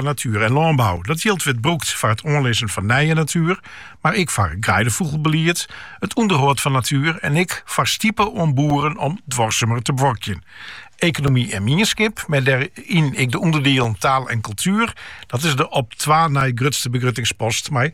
natuer en lânbou. Dat jild wurdt brûkt foar it oanlizzen fan nije natuer, mar ek foar greidefûgelbelied, it ûnderhâld fan natuer en ek foar stipe oan boeren om duorsumer te buorkjen. Ekonomy en mienskip, mei dêryn ek de ûnderdielen taal en kultuer, dat is de op twa nei grutste begruttingspost mei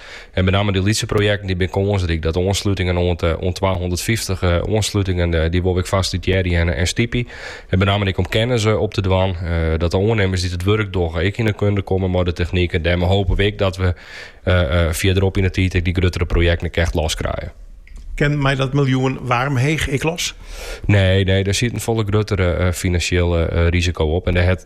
En benammen dy lytse projekten dy bin kânsryk. Dat de oanslutingen oant twahûndertfyftich oanslutingen dy wol we ek fasilitearje en stypje. En benammen ek om kennis op te dwaan. Dat de oannimmers dy't it wurk dogge ek yn de kunde komme mei de technyk. En dêrmei hope we ek dat we fierderop yn de tiid ek dy gruttere projekten ek echt los krije. Kin mei dat miljoen Warm Heeg ek los? Nee, nee, dêr siet in folle gruttere finansjele risiko op. En dêr hat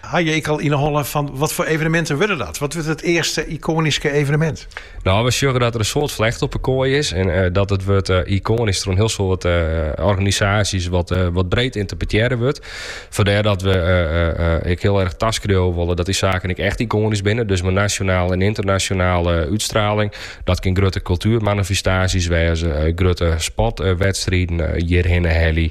Ha je ek al yn 'e holle fan wat foar eveneminten wurde dat? Wat wurdt it earste ykonyske evenemint? No, we sjogge dat der in soad flecht op 'e koai is en dat it wurd ykonysk troch in hiel soad organisaasjes wat breed ynterpretearre wurdt. Fandêr dat we ek hiel erg taskriuwe wolle dat dy saken ek echt ykonysk binne. Dus mei nasjonale en ynternasjonale útstraling. Dat kin grutte kultuermanifestaasjes wêze, grutte sportwedstriden hjirhinne helje.